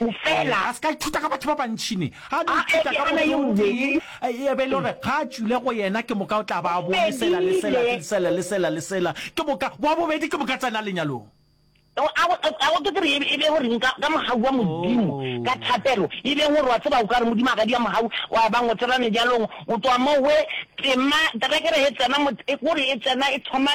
O fela. A se ka ithuta ka batho ba bantši ne. A no ithuta ka motho yo tee, e be e le gore ga a tšwile go yena ke moka o tla ba a bo le sela le sela le sela le sela le sela. Ke moka, wa bobedi ke moka a tsena lenyalong. A go tsotse gore e be go reng ka mogau wa Modimo ka thapelo? E be gore wa tseba o ka re Modimo a ka dia mogau, wa ba ngotsela mejalong, go tšwa mo we tsema, terekere e tsena, e kore e tsena e thoma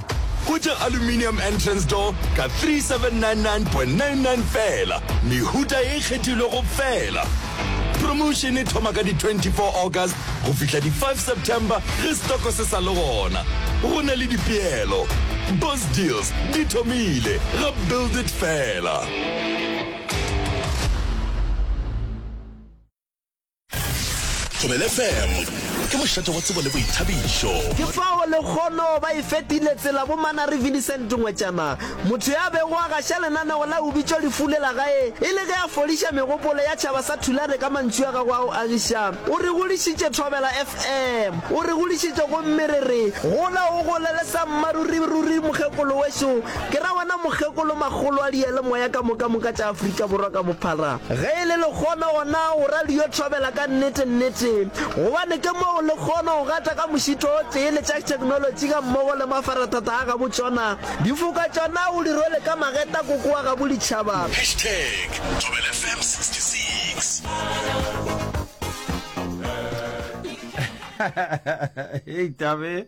Go tša aluminium entrance door ka 3799.99 fela, mehuta e kgethilwego fela. Promotion e thoma ka di 24 August go fihla di 5 September ge stoko se sa le gona. Go na le dipeelo. Boss deals di thomile ga build it fela. Thobele FM ke mošate wa tsebo le boithabišo. Ke fao lekgono ba e fetile tsela bo Manari Vincent Ngwetšama, motho ya bego a gaša lenaneo la Ubitšo lefu le la gae e le ge a fodiša megopolo ya tšhaba sa Thulare ka mantšu a gagwe a go agiša. O re godišitše Thobela FM, o re godišitše gomme re re, Gola o gole le sa mmaruri ruri mokgekolo wešo. Ke ra wena mokgekolo makgolo a diyalemoya ka mokamoka tša Afrika Borwa ka bophara, ge e le lekgono gona o ra le yo thobela ka nnete nnete, gobane ke mo o lekgono go gata ka mošito o tee le tša theknolotši ga mmogo le mafarathata a gabo tšona. Difoka tšona o di rwele ka mageta koko wa gabo ditšhaba. Hashtag Thobela FM 66. Hei Tabe,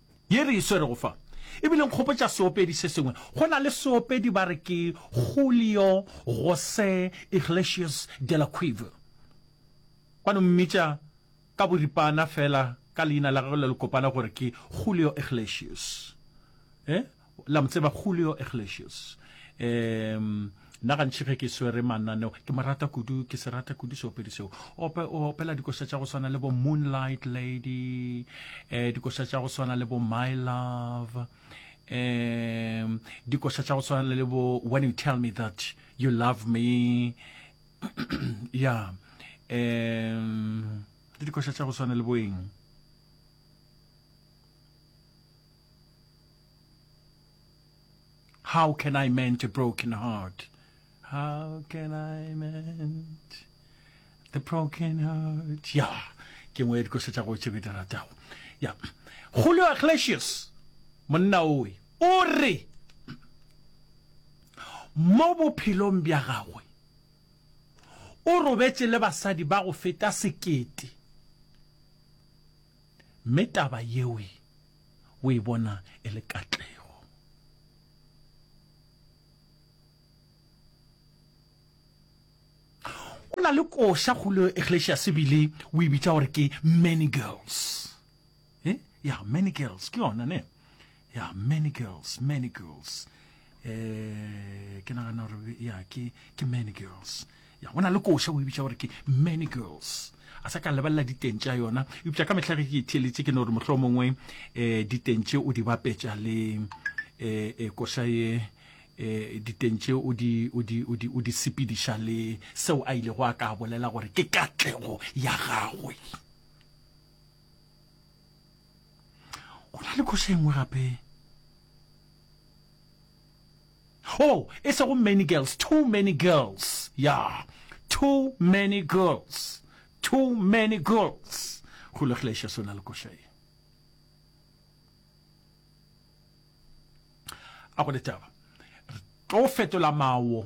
Ye re e swerego fa e bile nkgopotša seopedi se sengwe. Go na le seopedi ba re ke Julio José Iglesias de la Cueva. Ba no mmitša ka boripana feela ka leina la gagwe le lekopana gore ke Julio Iglesias. Eh? La mo tseba Julio Iglesias? Ehm, nna gantši ge ke swere mananeo ke mo rata kudu, ke se rata kudu seopedi seo. Ope, o opela dikoša tša go swana le bo Moonlight Lady, eh, dikoša tša go swana le bo My Love, um dikoša tša go swana le bo When You Tell Me That You Love Me, ya um le dikoša tša go swana le boeng How can I mend a broken heart? How can I mend the broken heart? Ya, ke ngwe ya dikosa tša go tše ke di ratago. Ya, Julio Iglesias, monna owe, o re mo bophelong bja gagwe o robetše le basadi ba go feta sekete. Mme taba yeoe o e bona e le katlego. Go na le koša Julio Iglesias ebile o e bitša gore ke Many Girls. Eh? Ya, Many Girls, ke yona ne? Yeah, many girls, many girls. Eh, ke nagana gore ya ke ke many girls. Ya go na le koša o e bitša gore ke many girls. A sa ka lebelela diteng tša yona. Eupša ka mehla ge ke itheeletše ke no gore mohlolo mongwe eh diteng tše o di bapetša le eh, eh koša ye eh diteng tše o di o di o di o di sepediša le seo a ile go a ka bolela gore ke katlego ya gagwe. go na le khoša engwe gape oh e sego many girls too many girls ya yeah. too many girls too many girls go legleša sona le koša e a go le taba re tlo fetola mawo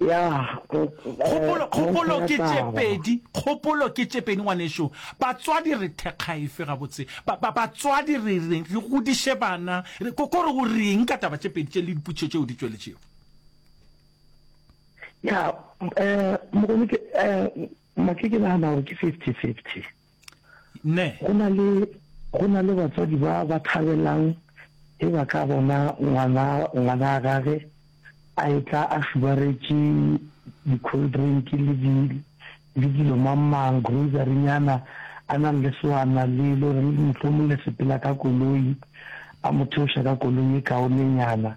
Kgopolo ke tše pedi, kgopolo ke tše pedi ngwanešu. Batswadi re thekga efe gabotse? Batswadi re re godiše bana, ko re o reng ka taba tše pedi tše le dipotšišo tšeo di tšweletšego? Ya, Mokone, ke nagana gore ke fifty fifty. Ne. Go na le, go na le batswadi ba ba thabelang ge ba ka bona ngwana, ngwanaa gage a etla a šubaretše di-cold drink le di, le dilo mang-mang, grocery-nyana, a nang le sewana le, le reng mohlomong le sepela ka koloi, a mo theoša ka koloi e kaonenyana.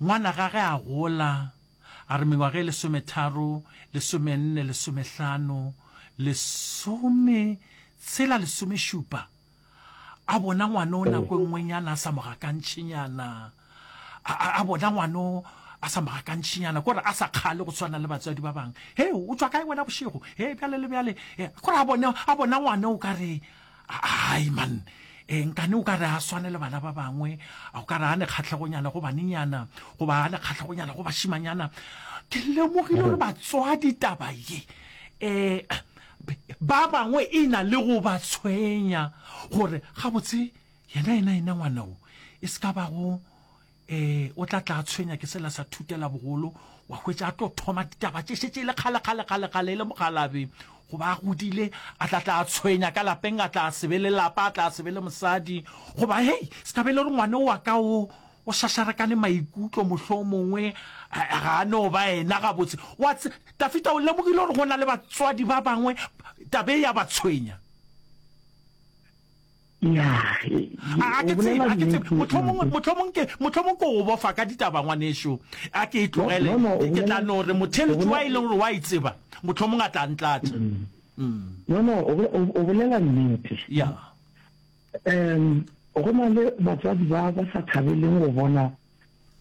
Ngwana gage a gola, a re mengwaga e lesometharo, lesomenne, lesomehlano, lesometshela, lesomešupa, a bona ngwana o nako e nngwenyana a sa mo gakantšhenyana, a, a bona ngwana o a sa mo gakantšhenyana, kore a sa kgale go tshwana le batswadi ba bangwe. Hei, o tšwa kae wena bošego? Hei, bjale le bjale. Kore a bona, a bona ngwana o ka re, Hai man, e, nkane o ka re a swane le bana ba bangwe, o ka re a ne kgatlhegonyana go banenyana goba a ne kgatlhegonyana go bashimanyana. Ke lemogile gore batswadi taba ye e ba bangwe e na le go ba tshwenya gore gabotse yena yena yena ngwana o e se ka bago ee o tla tla tshwenya ke sela sa thutela bogolo wa hwetša a tlo thoma ditaba tše šetse e le kgale kgale kgale kgale e le mogalabe goba a godile a tla tla tshwenya ka lapeng a tla sebe le lapa a tla sebe le mosadi goba hei se tla be le gore ngwane wa ka o o šašarekane maikutlo mohlho mongwe ga a no ba ena gabotse wa tafita o lemogile gore go na le batswadi ba bangwe tabe ya ba tshwenya ya he a a ke tseba a ke tseba mohlomong mohlomong ke mohlomong ke go bofa ka ditaba ngwanešu a ke e tlogele No, no, o ke tla bolela- no re motheletši wa e leng gore wa e tseba mohlomong a tla ntlatša Mm. no no o bo- o- o bolela nnete ya um go na le batswadi ba ba sa thabeleng go bona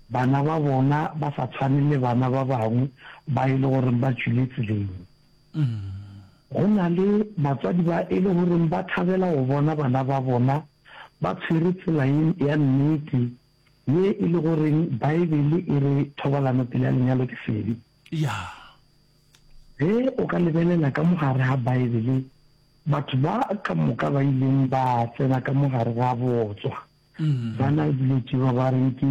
bana ba bona ba sa tshwane le bana ba bangwe ba e le goreng ba tšwile tseleng Go na le batswadi ba e le goreng ba thabela go bona bana ba bona ba tshwere tsela ye ya nnete ye e le goreng Baebele e re thobalano pele ga lenyalo ke sebe. Ge o ka lebelela ka mo gare ga Baebele, batho ba ka moka ba ileng ba tsena ka mo gare ga botswa Mm. ba na dilo tše ba ba reng ke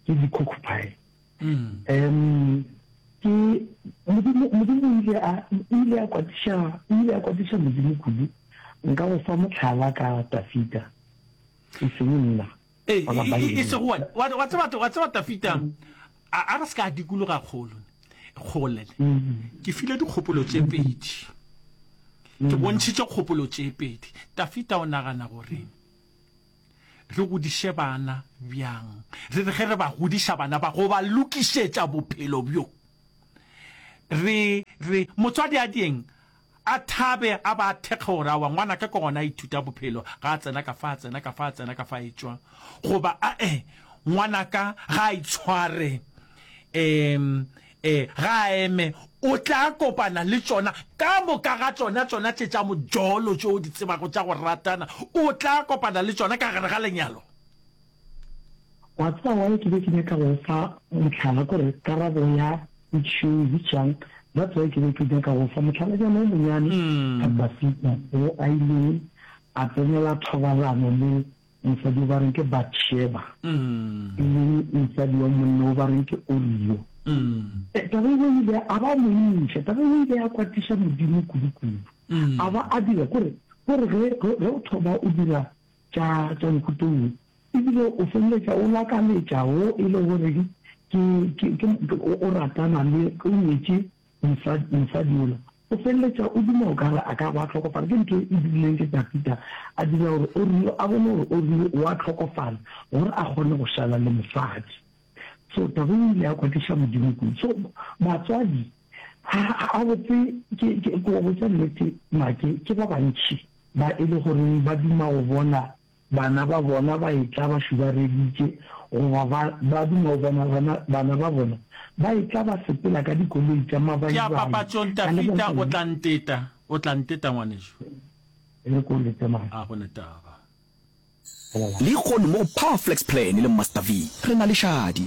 ke di-cockpile Mm. um ke modimo modimo o ile a o ile a kwatiša o ile a kwatiša modimo kudu nka go fa motlhala ka tafita e seng nna Ee, wa ka e- e- e Bible. sego wa- wa wa tseba wa tseba tafita a a re se ka dikologa kgolo kgole Mm. ke file dikgopolo tše pedi ke bontšhitše kgopolo tše pedi tafita o nagana goreng re godiše bana bjang, re re ge re ba godiša bana ba go ba lokišetša bophelo bjo re re motswadi a dieng a thabe a ba thekge gore awa ngwana ka ke gona a ithuta bophelo ga a tsena ka fa a tsena ka fa a tsena ka fa etšwa goba a e ngwana ka ga a itshware um Ee, ga a eme, o tla kopana le tšona, ka moka ga tšona, tšona tše tša mojolo tše o di tsebago tša go ratana, o tla kopana le tšona ka gare ga lenyalo. Wa tseba why ke be ke nyaka go fa mohlala, kore karabo ya potšišo e bitšwang, that's why ke be ke nyaka go fa mohlalanyana o monyane ka Dafida, wo a ilego a tsenela thobalano le Mosadi wo ba reng ke Batšheba, e leng mosadi wa monna wo ba reng ke Urio. Taba eo o ile a ba montšha. Taba eo o ile ya kwatiša Modimo kudukudu. A ba a dira kore gore ge ge o thoba o dira tša tša mohuto wo, ebile o feleletša o lakaletša wo e le goreng ke ke ke o ratana le o nyetše Mosadi, mosadi yola o feleletša o duma okare a ka ba a hlokofala. Ke ntho e dirileng ke Tafita, a dira gore Orio a bone gore Orio o a hlokofala gore a kgone go šala le mosadi. So taba e ile ya kwatiša Modimo kudu. So batswadi ga botse, ke, ke, ke wa botša nnete, make ke ba bantši ba e le goreng ba duma go bona Bana ba bona ba etla ba šubareditše, goba ba, ba duma go bona bana, bana ba bona ba etla ba sepela ka dikoloi tša Ke a mabaibane papatšong, ka Tafita, lebaka o la. tla nteta, o tla nteta, ngwanešu. E re ke o lete mane. A go ne taba. Lehono mo go Power Flex Plan le Master V, re na le šadi.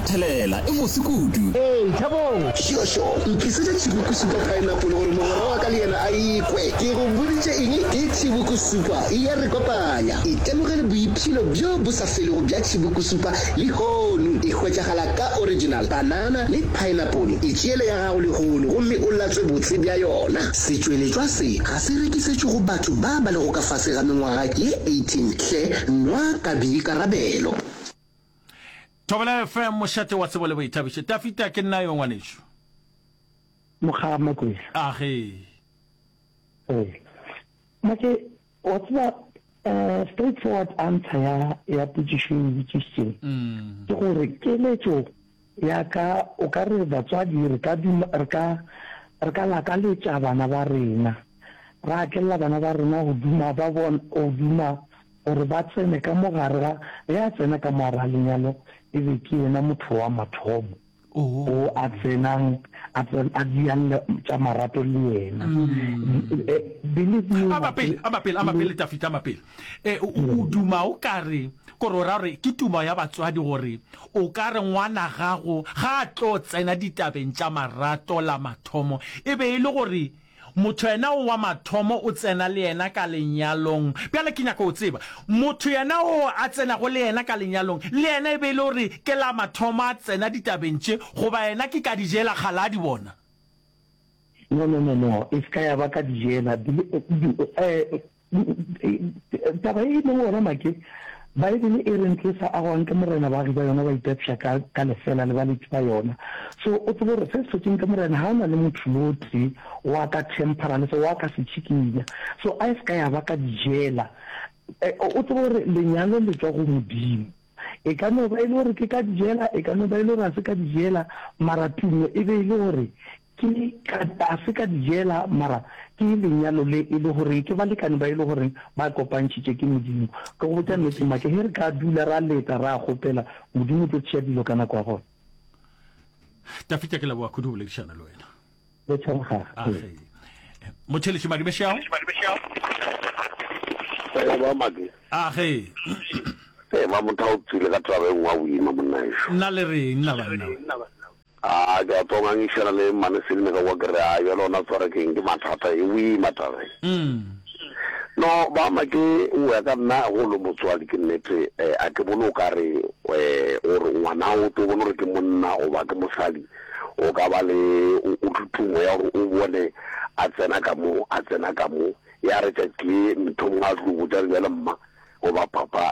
Thelela, e mose kudu. Ee, Thabong! Šošo, ntlisetša Tšibokusupa Pineapple gore mogwera wa ka le yena a e kwe. Ke go boditše eng? Ke Tšibokusupa, e ya re kopanya. Itemogele boipshino bjo bo sa felego bja Tšibokusupa lehono. E hwetšagala ka original banana le pineapple. Itšeele ya gago lehono gomme o latswe botse bja yona. Setšweletšwa se ga se rekisetšwe go batho ba ba lego ka fase ga mengwaga ye 18 hle, nwa ka boikarabelo. Thobela FM, mošate wa tsebo le boithabišo. Tafita, ke nna yo, ngwanešu. Mokgaba Makwela. A ge. E. Make, wa tseba, uh, straight forward answer ya, ya potšišo e botšišitšeng. Mm. Ke gore, keletšo ya ka, o ka re batswadi, re ka, re ka, re ka lakaletša bana ba rena. Ra akelela bana ba rena go duma, ba bona, go duma. gore ba tsene ka mo gare ga ge a tsena ka mo gare ga lenyalo, e be ke yena motho wa mathomo o a tsenang a tsena a dialle tša marato le yena. Eh, believe me, Ama pele, ama pele, ama pele, Tafita, ama pele. Eh, o o duma o ka re, gore o ra gore ke tumo ya batswadi gore o ka re ngwana gago ga a tlo tsena ditabeng tša marato la mathomo e be e le gore Motho yena o wa mathomo o tsena le yena ka lenyalong. Bjale ke nyaka go tseba, motho yena o a tsenago le yena ka lenyalong, le yena e be e le gore ke la mathomo a tsena ditabeng tše, goba yena ke kadijela kgale a di bona? No, no, no, no, e se ka ya ba kadijela. Bile, bile, eh, Taba e e lego gona make, Baebele e reng tlo sa agwang ke morena baagi ba yona ba itapša ka ka lefela le baletši ba yona. So o tsebe gore se se hlotšeng ke morena ga o na le motho yo tee wa ka temper le se wa ka se tšhikinya. So a e se ka ya ba ka dijela. O tsebe gore lenyalo le tšwa go Modimo. E ka no ba e le gore ke ka dijela, e ka no ba e le gore ga se ka dijela, mara tumo e be e le gore Ke ka a se ka di jela, mara ke lenyalo le e le gore ke balekane ba e le gore ba kopantšhitše ke Modimo. Ke go botša nnete, Mmake, ge re ka dula ra leta ra kgopela, Modimo o tlo tšea dilo ka nako ya gona. Tafita, ke leboga kudu go boledišana le wena. Le tshwarega. Age. Motheletši Madibešeao. Ee, ba Madi. Age. Ee, ba motho o tswile ka taba e nngwe a boima monna ešo. Nna le reng, nna banna? A ke a tswa ngangišana le mmane Selina ka kwa ke re, A bjale ona tsware keng ke mathata e wee matabeng. No ba ma ke o ya ka nna go lo motswadi ke nnete a ke bone o ka re o re ngwana o tlo bone gore ke monna goba ke mosadi o ka ba le o thuthumo ya gore o bone a tsena ka mo a tsena ka mo ya re tšatši le mthomong a tlo botša re bjale mma goba papa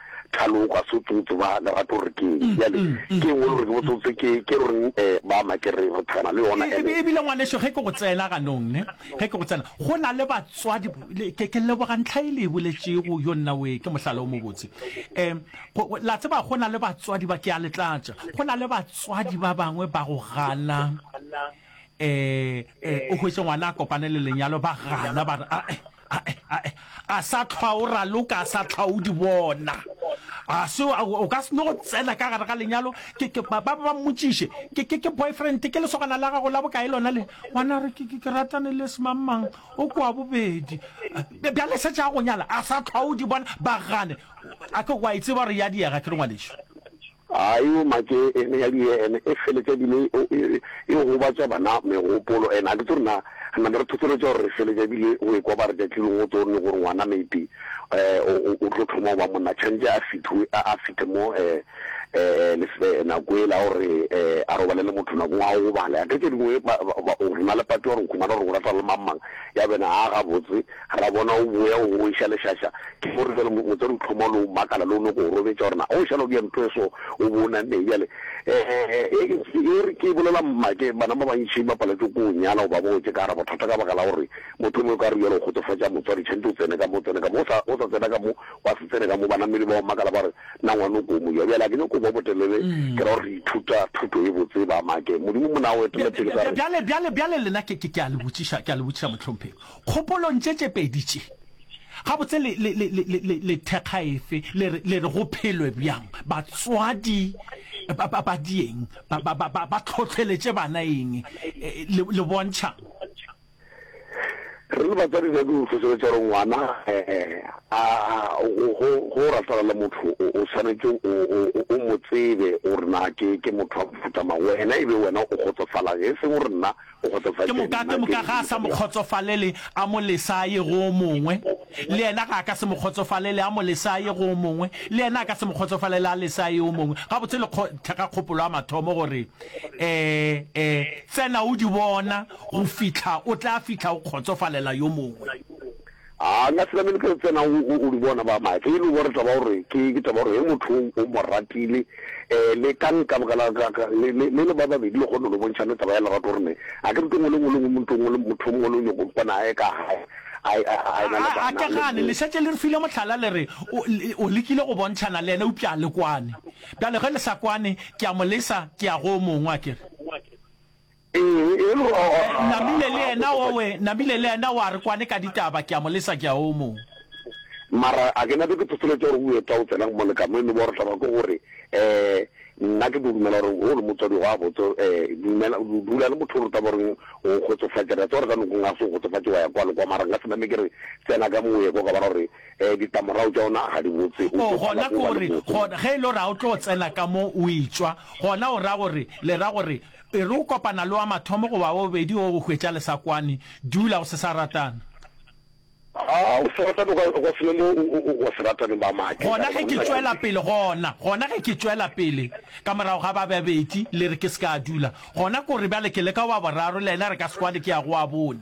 Thalo o ka se tsotse ba lerato gore ke eng bjale ke eng o le gore ke botsotse ke ke reng eh ba make re re thana le yona ene e bile ngwaneso ge ke go tsena ganong ne ge ke go tsena go na le batswadi ke ke leboga ntlha e le e boletšego yo nna we ke mohlala o mobotse um la tseba go na le batswadi ba ke a letlatša go na le batswadi ba bangwe ba go gana Eh, eh, o hwetše ngwana a kopane le lenyalo ba gana ba re ae ae ae a sa tlhwa o raloka a sa tlhwa o di bona a se o- o ka se no go tsena ka gare ga lenyalo ke ke- ba ba ba mmotšiše ke ke ke boyfriend ke lesogana la gago la bokae lona le ngwana a re ke ke- ke ratane le semangmang o kwa bobedi Eh, bjale se tša go nyala a sa tlhwa o di bona ba gane a ke wa e tseba gore ya diega ke re ngwaneso A e omatše ene ya die ene e feletše ebile e, e, e gobatša bana megopolo. Ene a ke tsore na re name re thotholetša gore re feletše ebile go ekwa ba re tšatšilong go tso ne gore ngwana maybe eh, o, o, o tlo thoma go ba monna tshwanetse a fithoe a, a fithe mo eh, eh, lesbe nako ele a gore eh, a robale le motho nakong a o gobale a ke tše dingwe ba, ba, ba, o rena le pati wa gore nkhumana gore go rata le mang mang ya bena a gabotse Ra bona o boya o iša lešaša, ke gore bjale motswadi o tlhoma o no makala le o nyoko go robetša gore na o šala o bea ntho e so o bo o nanneng bjale. Ee, e re ke bolela mmake, bana ba bantši ba paletšwe ke go nyala goba bo wetše ka gare ga bothata ka baka la gore motho mongwe e ka re bjale o kgotsofatša motswadi tšhwantše o tsene ka mo, o tsene ka mo, o sa tsena ka mo, gwa se tsene ka mo. Banamedi ba o makala ba re, Na ngwana o ko mo ja? Bjale ga ke nyoko go ba botelele, ke ra gore re ithuta thuto e botse ba make. Modimo mo ne a o etela pele ka re. Bjale, bjale, bjale lena ke, ke, ke a le botšiša, ke a le botšiša mohlomphegi, Kgopolong tše tše pedi tše, gabotse le, le, le, le, le, le thekga efe? Le re, le re go phelwe bjang? Batswadi ba, ba, ba dieng? Ba, ba, ba, ba, ba tlhotlheletše bana eng? E, le, le bontšhang? Re le batswadi re nyake go hlohleletša gore ngwana a, go, go, go ratana le motho o, o swanetše o, o, o, o mo tsebe gore na ke, ke motho wa mofuta mang. Wena e be wena o kgotsofalang, e seng gore nna o kgotsofaditše Ke moka, ke moka ga a sa mo kgotsofalele, a mo lesa a ye go o mongwe. Le yena ga a ka se mo kgotsofalele, a mo lesa a ye go o mongwe. Le yena a ka se mo kgotsofalele, a lesa a ye o mongwe. Gabotse le kgo, thekga kgopolo ya mathomo gore, eh, eh, tsena o di bona go fihla o tla fihla o kgotsofalela yo mongwe. A nka se namele ke go tsena o, o, o di bona ba mae. Ge e le gore taba ya gore ke, ke taba ya gore ge motho o, o mo ratile, eh, le ka nka baka la ka, ka, le, le, le le ba babedi le kgone go le bontšhana taba ya lerato gore ne, a ke re tongwe le nngwe le nngwe motho ngwe le motho ngwe le nyoko mpona a ye ka gae, a, a, a, a ena le A, a ke bana, le gane, le bo. šetše le re file mohlala le re, o, le, o lekile go bontšhana le yena eupša a le kwane. Bjale ge le sa kwane, ke a mo lesa, ke ya go o mongwe, a ke re. Namile le yena owe, Namile le yena oa re kwane ka ditaba, kea mo lesa kea o mo. Mara a ke nape ke thotoletša gore oe twa o tsena go moleka mo e no ba gore taba ke gore nna ke do dumela gore wo le motswadi go a botse dumela dula le motho o rutwa gore o kgotsofatša re tsa gore ka noko nga se kgotsofatše wa ya kwa le kwa mara nka se name ke re tsena ka mo ye kwa ka bara gore ditamorago tša ona ga di botse o gona gore gona ge e le gore ga o tlo tsena ka mo o e tšwa gona o ra gore le ra gore Pele o kopana le wa mathomo goba wa bobedi go go hwetša le sa kwane, dula go se sa ratana. A o se ratane o ka se be mo go se rataneng ba maake. Gona ge ke tšwela pele, gona, gona ge ke tšwela pele ka morago ga ba babedi, le re ke se ka dula, gona ke gore bjale ke le ka wa boraro le yena re ka se kwane ke ya go wa bone.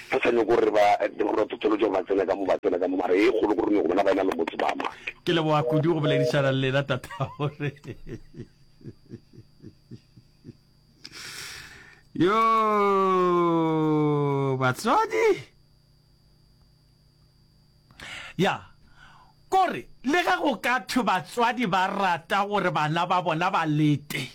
Re sa nyoko re ba re totolotše gore ba tsene ka mo ba tsena ka mo mara ye kgolo gore nyoko bona ba ena le motse ba ma. Ke leboga kudu go boledišana le lena tatagore. Yo batswadi Ya, kore le ge go ka thwe batswadi ba rata gore bana ba bona ba lete,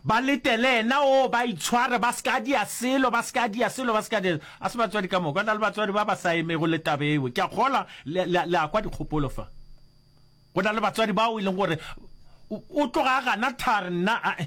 ba lete le yena, oo, ba itshware, ba se ka dia selo, ba se ka dia selo, ba se ka dia. A se batswadi ka moka, go na le batswadi ba ba sa emego le taba eo. Ke a kgolwa le, le, le a kwa dikgopolo fa. Go na le batswadi bao e leng gore o, o tloga a gana thari, nna, ae.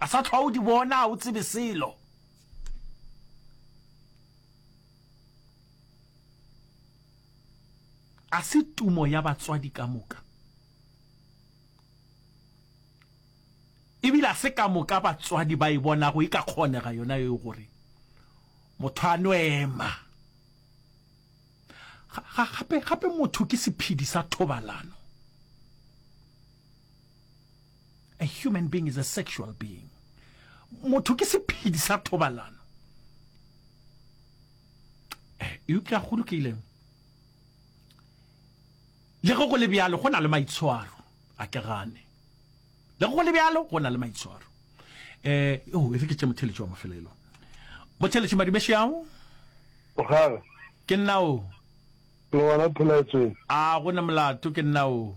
A sa tlhwa o di bona, a o tsebe selo. A se tumo ya batswadi ka moka. Ebile a se ka moka batswadi ba e bonago e ka kgonega yona yo gore motho a no ema. Gape gape motho ke sephedi sa thobalano. A human being is a sexual being. Motho ke sephedi sa thobalano. Eh, eupša go lokile. Le go go le bjalo go na le maitshwaro a ke gane. Le go le bjalo go na le maitshwaro. Eh, oh, e re ke tše motheletši wa mafelelo. Motheletši Madumešo yago? Mogala. Ke nna o. Le gona phelaetsweng? A go na molato ke nna o.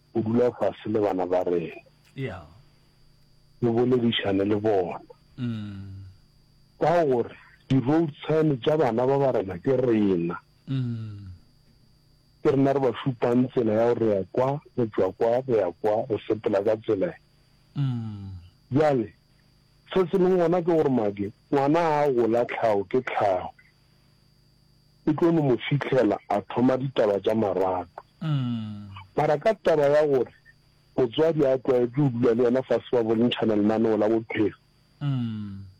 go dula fase le bana ba rena, re boledišane le bona ka gore di-road sign tša bana ba ba rena ke rena. Ke rena re ba šupang tsela ya gore re ya kwa, re tšwa kwa, re ya kwa, re sepela ka tsela e. Bjale se se leng gona ke gore Mage ngwana ga a gola tlhago ke tlhago. e tlo no mo fihlela a thoma ditaba tša marato. Mara ka taba ya gore motswadi a tlwaetše go dula le yena fase ba bontšhana lenaneo la bophelo,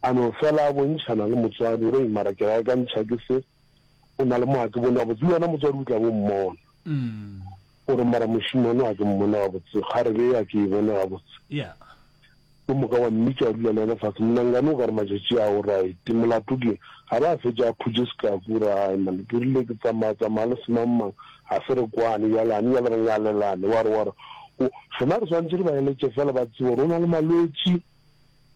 a no fela a bontšhana le motswadi gore, Hei, mara ke ra akantšha ke se, o na le mo a ke bone, gabotse le wena motswadi o tla bo mmona. O re, Mara mošemane wa ke mmone gabotse, ga re be ya ke e bone gabotse. Yo moka wa mmitša, wa dula le yena fase. Monangane o ka re, Matšatši a, o right. Molato ke eng? A be a fetša a phutše sekaku, o re, Hai man, ke rile ke tsamaya, tsamaya le semangmang, ga se re kwane, bjale gane bjale re ngalelane. Wa re, wa re, O, rena re swanetše re ba eletše feela ba tsebe gore o na le malwetši,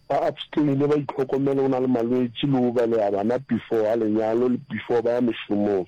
ba abstain-e, ba itlhokomele, o na le malwetši, le o beleha bana before ga lenyalo le before ba ya mešomong.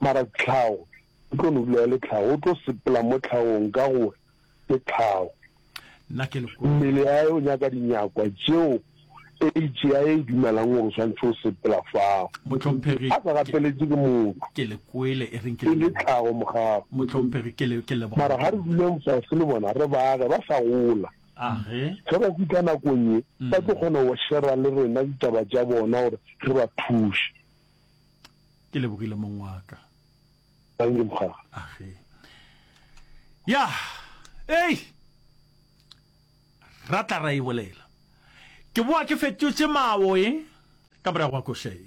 mara tlhago e tlo no dula e le tlhago o tlo sepela mo tlhagong ka gore ke tlhago mmele ya o nyaka dinyakwa tšeo age ya e dumelang gore o tshwanetse o sepela fao a sa gapeletse ke motho e le tlhago mogago mara ga re duleng fase le bona re baage ba sa gola ge ba fitlha nakong ye mm. ba tlo kgona go shera le rena ditaba tša bona gore re ba thuse Ke lebogile mong wa ka. Thank you mokgara. Age. Ya. Ei. Ra tla ra e bolela. Ke boa ke fetotše mawo e ka morago ga koša e.